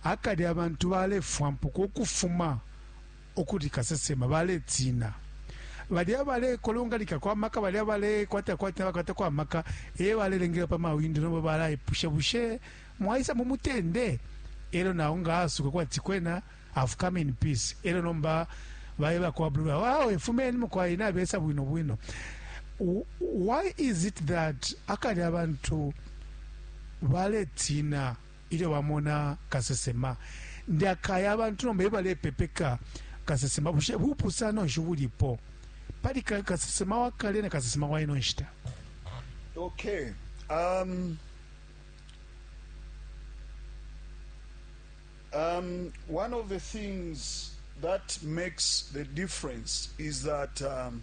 Akale abantu balefwampuka ukufuma ukuli kasesema, baletina balya abalekolonganikako amaka, balya abalekwatako atina bakwatako amaka, e balelengela pa mawindo. Nomba balaipusha, bushe mwaisa mu mutende? Elo nao nga asuka kwati kwena I've come in peace, elo nomba baeba kwa blue, awe fumeni mukwai, nabesa bwino bwino. Why is it that akale abantu baletina? Ilyo bamona kasesema, ndi akaya abantu nomba ebalepepeka kasesema. Bushe bupusano nshi ubulipo pali kasesema wa kale na kasesema wa ino nshita? Okay. Um, um, one of the things that makes the difference is that um,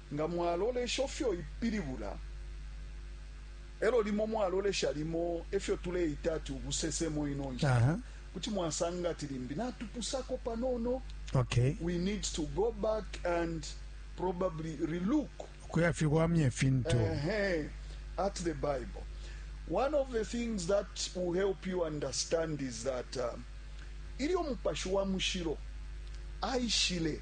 Nga mwalolesho fyo ipilibula, e lyo limo mwalolesha limo ifyo tuleita ati ubusesemo ino nshita, uh -huh. kuti mwasanga ati limbi natupusako panono. Okay. We need to go back and probably relook kuyafiwamya ifintu uh -huh. at the Bible. One of the things that will help you understand is that uh, ilyo mupashi wa mushiro aishile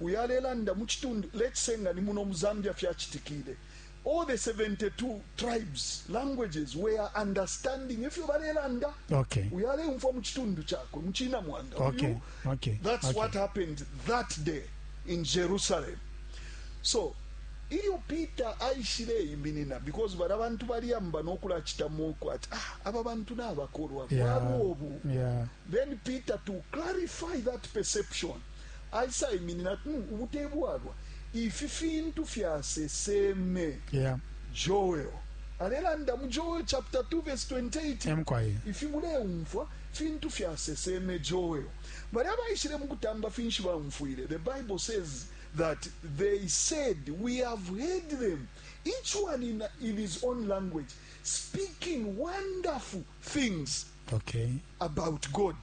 Uyu alelanda mu citundu, let's say nga ni muno mu Zambia fyacitikile, all the 72 tribes, languages were understanding ifyo balelanda. Okay. Uyu aleumfwa mu citundu cakwe, mu Cina Mwanda. Okay. Uyu, okay. That's okay. what happened that day in Jerusalem. So, ilyo Peter aishile iminina because bala bantu baliyamba nokula chita moko ati ah aba bantu na bakorwa yeah. yeah. then Peter to clarify that perception aisaiminina ati, mm, ubu te bwalwa. Ifi fintu fyaseseme yeah. Joel alelanda mu Joel chapter 2 verse 28 ifi muleumfwa fintu fyaseseme Joel. Bali abaishile mu kutamba finshi baumfwile? The Bible says that they said we have heard them each one in, in his own language speaking wonderful things okay. about God.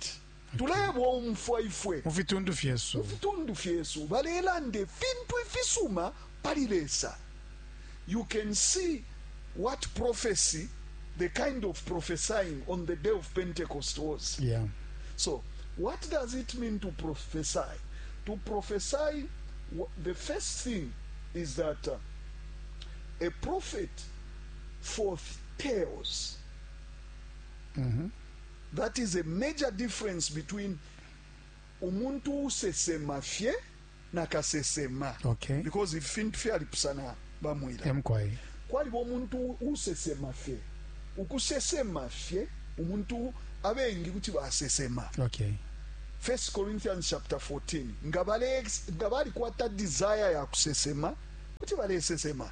Tulebomfwa ifwe mu fitundu fyesu. Mu fitundu fyesu balelanda ifintu ifisuma pali Lesa. You can see what prophecy, the kind of prophesying on the day of Pentecost was. Yeah. So, what does it mean to prophesy? To prophesy, the first thing is that uh, a prophet foretells. Mm -hmm. That is a major difference between umuntu uusesema fye na kasesema. Okay. Because if fintu fye alipusana bamwila. Emkwai. Kwa libo umuntu uusesema fye. Ukusesema fye, umuntu abengi kuti wa sesema. Okay. First Corinthians chapter 14. Ngabali kwa ta desire ya kusesema, kuti wale sesema.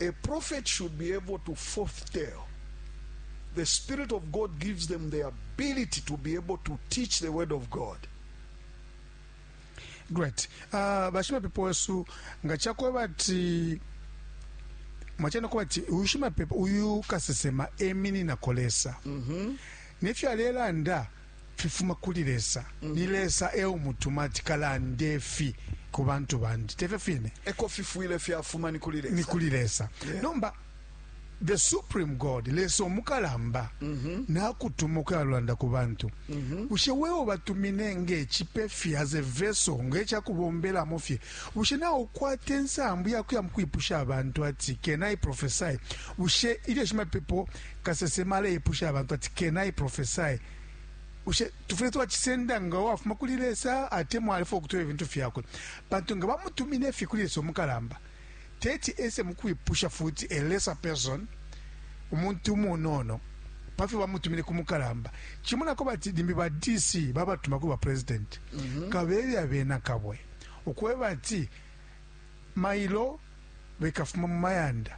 A prophet should be able to foretell. The Spirit of God gives them the ability to be able to teach the Word of God. great uh, bashimapepo wesu nga chakweba ati mwachana kuba ati uyu shimapepo uyu kasesema eminina kolesa mm -hmm. nefyo alelanda fifuma kuli Lesa. Mm -hmm. Ni Lesa e umutuma ati kalande fi ku bantu bandi. Tefyo fine. Eko fifwile fyafuma ni kuli Lesa. Ni kuli Lesa. Yeah. Nomba the supreme god lesa omukalamba mm -hmm. nakutuma ukuyalanda ku bantu mm -hmm. bushe wewe batumine ng'ecipe fye as a vessel ng'ecakubombelamo fye bushe nawe ukwata ensambu yakuya mukwipusha abantu ati can i prophesy bushe ilyo shimapepo Kasesema aleipusha abantu ati, Can I prophesy? Bushe tufwile twacisenda nga wafuma kuli Lesa atemwa alefwaya ukutweba ifintu fyakwe? Pantu nga bamutumine fye kuli Lesa umukalamba, teti ese mu kwipusha futi a lesser person, umuntu umunono, pa fyo bamutumine ku mukalamba. Cimonako bati limbi ba DC babatuma kuli ba presidenti, kabebe abena Kabwe ukweba ati, Mailo bekafuma mu mayanda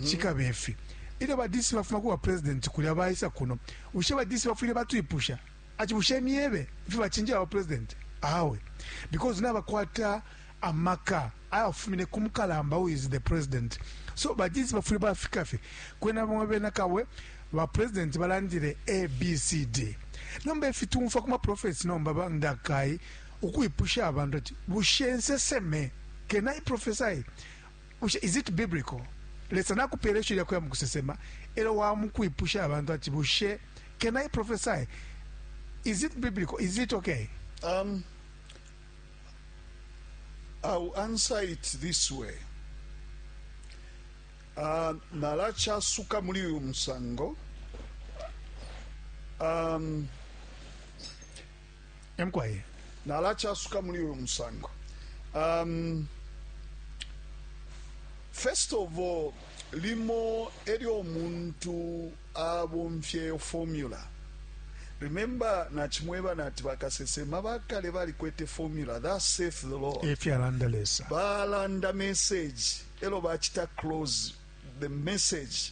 cikabe ifi. Ilyo ba DC bafuma kuba President kulya baisa kuno, bushe ba DC bafwile batwipusha ati bushe myebe ifyo bacinjeba ba President? Awe. Because nabakwata amaka ayafumine ku mukalamba who is the President. So ba DC bafwile bafika fye. Kwena bamo bena Kabwe, ba President balandile A, B, C, D. Nomba ifi tumfwa kuma prophets nomba ba ndakai, ukwipusha abantu ati, Bushe nseseme? Can I prophesy? Bushe, is it biblical? Lesa nakupele isho lyakuya mukusesema, elo wamukwipusha abantu ati, Bushe, can I prophesy? Is it biblical? Is it okay? Um, I'll answer it this way. Uh, nalachasuka muli uyu musango. Um, Eh, mukwai nalacasuka muli uyu musango um, first of all limo elyo omuntu abomfyeyo formula remember nachimweba nati bakasesema bakale balikwete formula that saith the lord efyalanda lesa balanda message elo bachita close the message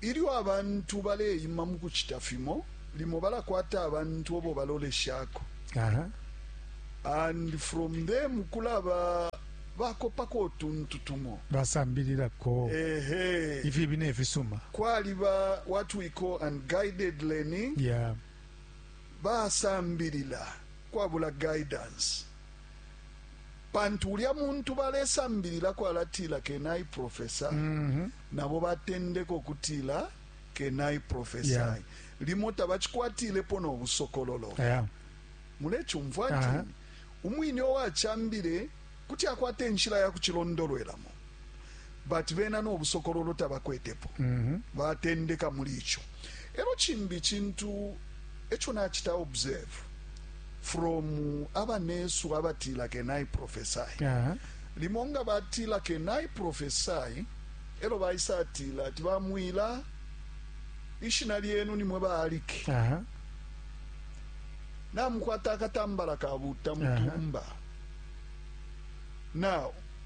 Ilyo abantu baleima mu kucita fimo, limo balakwata abantu obo baloleshako and from them kulaba bakopako utuntu tumo basambililako ifibi ne fisuma. Kwaliba what we call unguided learning, basambilila kwabula guidance. pantu ulya muntu balesambililako alatila kenai profesa mm -hmm. nabo batendeka ukutila kenai profesa yeah. limo tabacikwatilepo nobusokololo yeah. mulecumfwa uh -huh. umwine owacambile kuti akwata enshila ya kucilondolwelamo but bena no busokololo tabakwetepo mm -hmm. batendeka muli ico elo cimbi cintu eco nacita observe from abanesu abatila kenai prophesy uh -huh. limo nga batila kenai prophesy elo baisa atila ati bamwila ishina lyenu nimwe baaliki uh -huh. namukwata akatambala kabuta mutumba uh -huh. now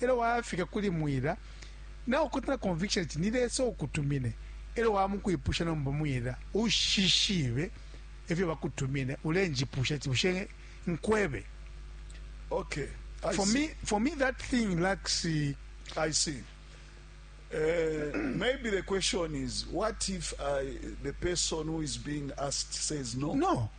elo wayafika kuli mwila na ukotana conviction ati ni Lesa ukutumine elo wamukwipusha nomba mwila ushishibe efyo bakutumine ulenjipusha ati bushe nkwebe okay I for see. me for me that thing lacks uh, I see. Uh, maybe the question is, what if I, the person who is being asked says no? no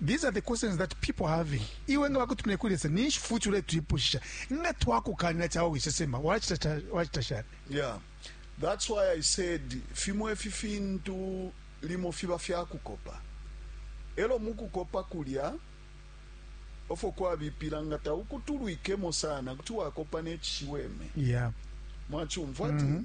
These are the questions that people having. Iwe nga bakutumine kuli Lesa ninshi futhi uletwipushisha. Nga twakukanina chawo wisesema wachita wachita shani? Yeah. That's why I said fimo efi fintu limo fiba fya kukopa. Elo mukukopa kulya ofo kwabipila nga taukutulwikemo sana kuti wakopa nechishiweme. Yeah. Mwachumva mm -hmm.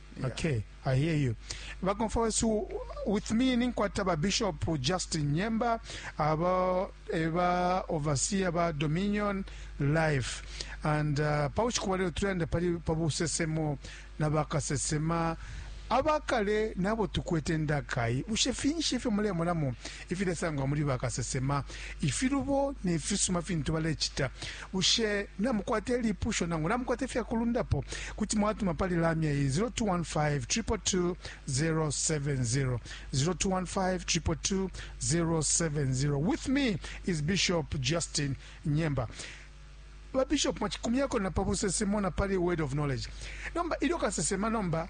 Yeah. Okay, I hear you. Bakomfa wesu with me ninkwata ba Bishop Justin Nyemba aba eba overseer ba Dominion Life and uh, pauchi kubalero tulenda pali pabusesemo na bakasesema abakale nabo tukwete ndakai bushe finshi ifyo mulemonamo ifilesangwa muli bakasesema, ifilubo ne fisuma fintu balecita. Bushe namukwata ilipusho nangu namukwata ifyakulundapo, kuti mwatuma pali lamya iyi, 0215 222 070, 0215 222 070. With me is Bishop Justin Nyemba. Ba Bishop, mwacikumyako na pa busesemo na pali word of knowledge. Nomba ilyo kasesema nomba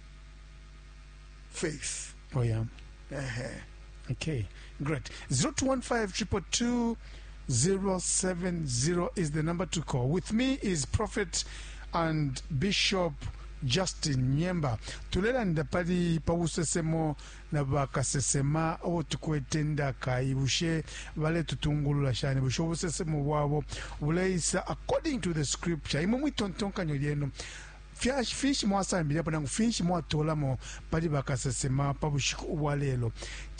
faith Oh yeah. ehe Okay, great. 0215 070 is the number to call. With me is Prophet and Bishop Justin Nyemba. Tulelanda pali pawusesemo na bakasesema abo tukwete ndaka ibushe baletutungulula shani bushe obusesemo bwabo buleisa according to the scripture imwe mwitontonkanyo lyenu Fyashi, finshi mwasambililapo nangu finshi mwatolamo pali bakasesema pa bushiku ubwa lelo?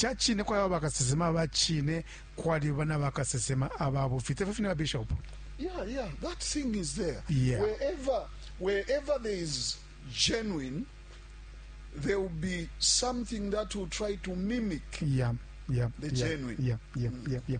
Ca cine kwaliba bakasesema aba cine, kwaliba na bakasesema aba bufi, te fyo fine ba Bishop? Yeah, yeah, that thing is there. Yeah. Wherever, wherever there is genuine, there will be something that will try to mimic Yeah, yeah, The yeah, genuine. yeah, yeah, yeah, yeah.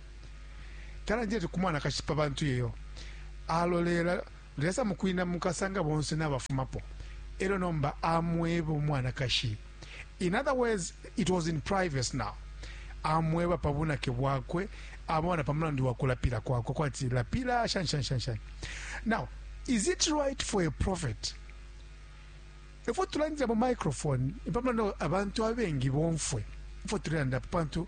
Talandile ku mwanakashi pa bantu iyo. Alolela Lesa mukwina mukasanga bonse nabafumapo. Elyo nomba amweba umwanakashi. In other words, it was in privacy now. Amweba pa bunake bwakwe, amweba na pa mulandu wa kulapila kwakwe kwati lapila shani shani shani shani. Now, is it right for a prophet? Efo tulandila mu microphone, pa mulandu abantu abengi bomfwe. Efo tulanda pa bantu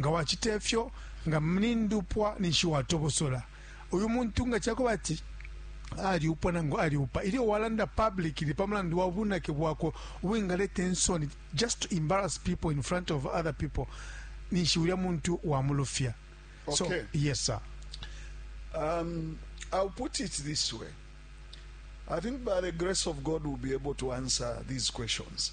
Nga wacita ifyo, nga ni ndupwa ninshi watobosola uyu muntu nga ca kuba ati aliupwa nangu aliupa ilyo walanda publicly pa mulandu wa bunake bwakwe ubwingaleta insoni just to embarrass people in front of other people ninshi ulya muntu wamulufya so Okay. yes sir Um, I'll put it this way. I think by the grace of God, we'll be able to answer these questions.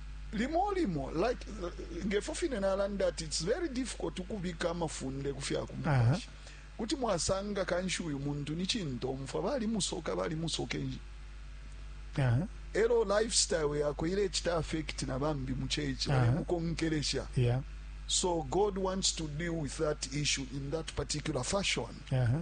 Limo limo, like, ngefo fine nalanda ati it's very difficult ukubika amafunde ku fya ku mupashi. Kuti mwasanga kanshi uyu muntu ni cintomfwa, balimusoka balimusoka enji. Aha. Elo lifestyle yakwe ilecita affect na bambi mu church Aha. balemukonkelesha. Yeah. So God wants to deal with that issue in that particular fashion. Aha.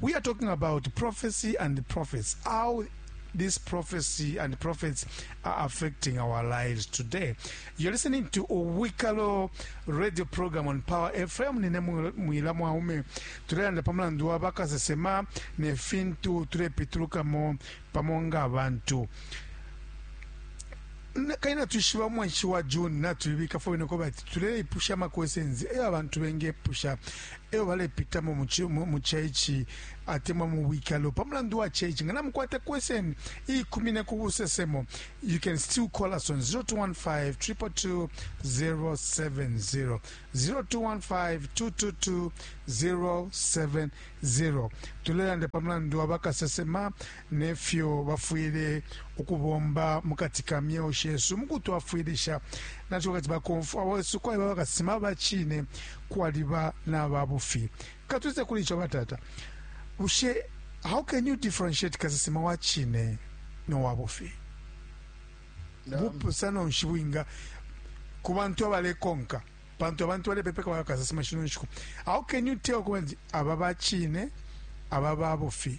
We are talking about prophecy and the prophets, how this prophecy and prophets are affecting our lives today. You're listening to Owikalo radio program on Power FM. Nine mwi- mwila mwaume tulelanda pa mulandu wa bakasesema ne fintu tulepitulukamo pamo nga abantu Na- kali natwishiba omwenshi wa june natwibika fo bene ko bati tuleipusha ama questions eyo abantu bengepusha eyo balepitamo mu churchi atemwa mu bwikalo pa mulandu wa church nga namukwata question iikumine ku busesemo you can still call us on 0215 222 070 0215 pa mulandu wa bakasesema ne fyo bafwile ukubomba mu kati ka myeo shesu mu kutwafwilisha na co kati bakomfwa wesu kwaliba bakasesema ba cine kwaliba na ba bufi katwise kuli ico batata bushe how can you differentiate kasesema wa cine no wa bufi bupusano nshi bwinga ku bantu abalekonka pantu abantu balepepeka bakasesema shino nshiku how can you tell kuba nti aba ba cine aba ba bufi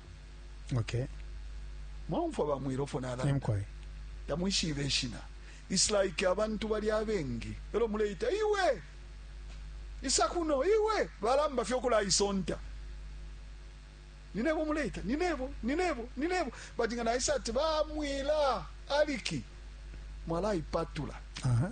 okay mwaumfwa bamwilofo nalanda tamwishibe ishina its like abantu bali abengi elo muleita iwe isa kuno iwe balamba fye okulaisonta ninebo muleita ninebo ninebo ninebo but nga naisa ati bamwila aliki mwalaipatula uh -huh.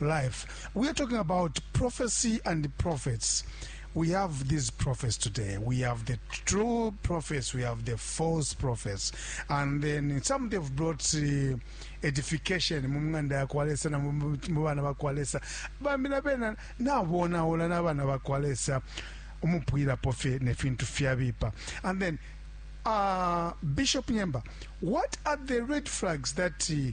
life. We are talking about prophecy and prophets. We have these prophets today. We have the true prophets. We have the false prophets. And then some they've brought uh, edification mu ng'anda ya kwa lesa na mu mu- mu bana ba kwa lesa bambi na bena nabonaula n'abana ba kwa lesa umupwilapo fye nefintu fyabipa and then uh, bishop nyemba what are the red flags that uh,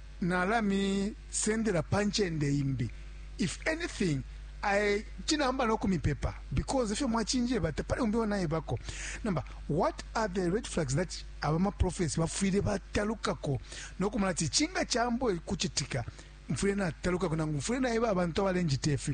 nalamisendela pa ncende imbi if anything I chinamba no kumipepa because ifyo mwachinjeba tapali umbi onaibako namba what are the red flags that abama prophets bafwile batalukako no kumala ti chinga chambo kuchitika mfwile natalukako nangu mfwile naiba abantu abalenjita ifi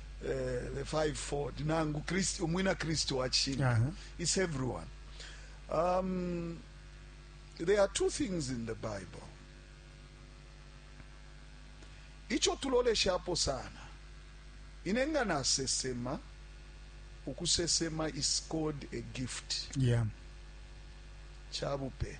eh, the fivefold nangu Kristo umwina Kristo wa cishinka Aha. it's everyone um, there are two things in the Bible ico tuloleshapo sana ine nga nasesema ukusesema is called a gift yeah. cabupe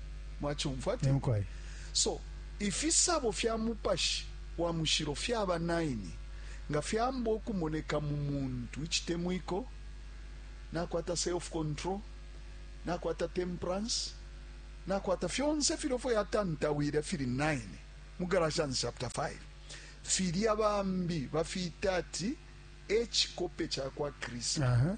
mwacumfwa ti so ifisabo fya mupashi wa mushilo fyaba 9 nga fyamba ukumoneka mu muntu icitemwiko nakwata self control nakwata temperance nakwata fyonse filyo fo yatantawile fili 9 mu galatians chapter 5 filya bambi bafiita ati ecikope ca kwa kristu uh -huh.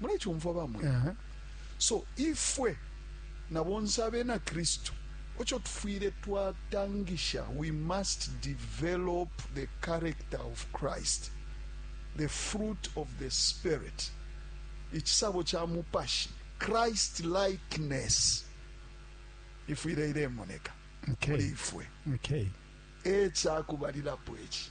mulecumfwa bamwe uh -huh. so ifwe na bonse abena kristu ocho tufwile twatangisha we must develop the character of christ the fruit of the spirit ichisabo cha mupashi christ likeness ifwile ilemoneka okay. ifwe okay. echakubalirapo echi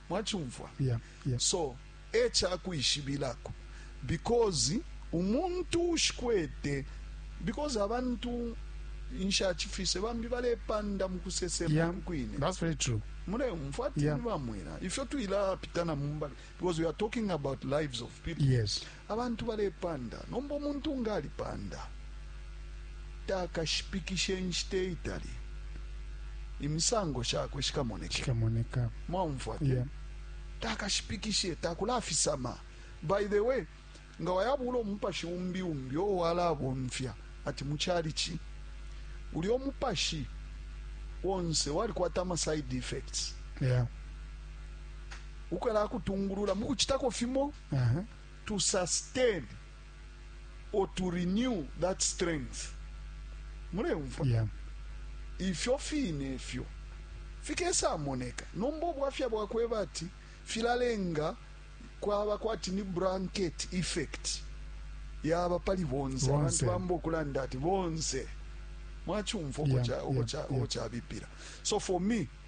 Mwacumfwa? So, e cakwishibilako. Because umuntu uushikwete, because abantu nshacifise, bambi balepanda mu kusesema uku kwine. Yeah, that's very true. Muleumfwa ati ni bamwina. Ifyo twila pitana mumbali. Because we are talking about lives of people. Yes. Abantu balepanda, nomba umuntu nga alipanda takashipikishe inshita iitali, imisango shakwe shikamoneka. Shikamoneka. Mwaumfwa te? Yeah. Takashipikishe, takulafisama. By the way, nga wayabula umupashi umbi umbi o walabomfya ati mu chalichi ulya umupashi wonse walikwata ama side effects Yeah. ukwela akutungulula mukuchitako fimo uh -huh. to sustain or to renew that strength muleumva yeah. ifyo fine ifyo fikesamoneka nomba obwafya bwakweba ati filalenga kwaba kwati ni blanket effect yaba pali bonse abantu bamba okulanda ati bonse mwachumva uko yeah, cha uko yeah, cha uko yeah. cha bipira so for me